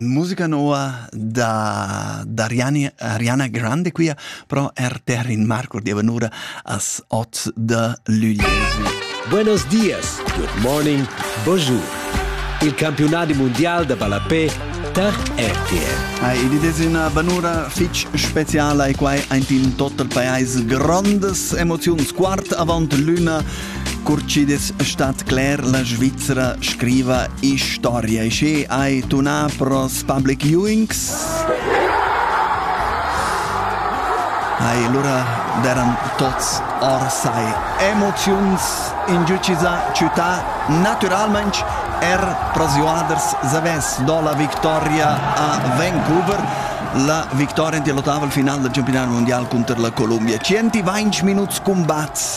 Musica nova da, da Ariane, Ariana Grande quia, però er ter in marcur di vanura as 8 de luglio. Buenos dias, good morning, bonjour. Il campionati mondial da ballapé tar RTL. Ai, id es üna vanura fich speciala e quai aint in tot il pajais grandes emoziuns. Quart avant l'una Cur chi'd stat cler, la Svizzera scriva historia e sche hai tunà pros public viewings Hai lura deran tots or sai emoziuns in giuciza città naturalmaing er prosiuaders zavess do la victoria a Vancouver la victoria in lottaval final del campionato mondial contro la Colombia 120 minuts combats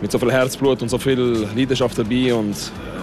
mit so viel Herzblut und so viel Leidenschaft dabei und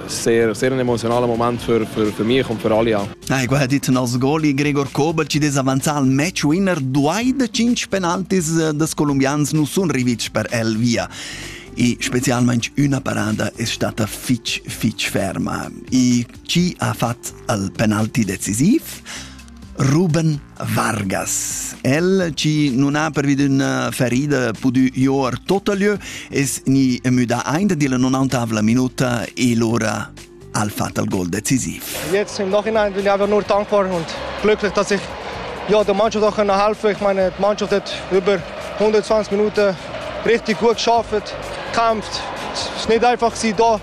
sehr, sehr ein emotionaler Moment für, für, für mich und für alle. Ja. Ha igual dit nos goli Gregor Kovac ed es avanzà al match winner duai da cinc penaltis das colombians nu sun rivits per el via. E specialmente una parada è stata fitch fitch ferma. E chi ha fatto il penalti decisivo? Ruben Vargas. El chi non ha pervi d'üna ferida pudü joer tot a lieu es gni müda aint dilla 90 minuta e lura al fatal gol decisiv. Jetzt im Nachhinein bin ich einfach nur dankbar und glücklich, dass ich ja, der Mannschaft auch helfen konnte. Ich meine, die Mannschaft hat über 120 Minuten richtig gut geschafft, gekämpft. Es ist nicht einfach da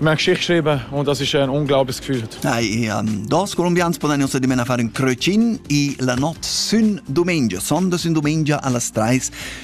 Mag schreiben und das ist ein unglaubliches Gefühl. Dai, um, dos colombians podanno dimena fare un crocin e la notte sun domenica, sonda sun domenica alle 3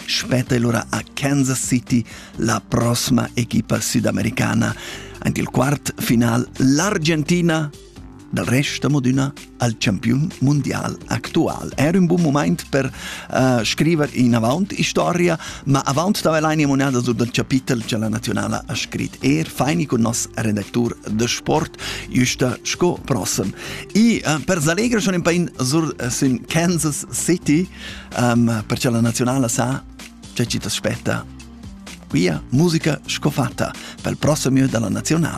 spetta allora a Kansas City la prossima equipa sudamericana. Anche il quart final, l'Argentina Dal rest amo d'üna al champiun mundial actual. Er ün bun moment per uh, scriver inavant historia, ma avant d'avair l'aine monada sur dal chapitel che la nazionala ha scrit er, faini con nos redactur de sport, justa sco prossem. I uh, per s'allegrer schon in pain sur uh, sün Kansas City, um, perché la nazionala sa che ci t'aspetta Quia musica scofatta pel prossimo della nazionale.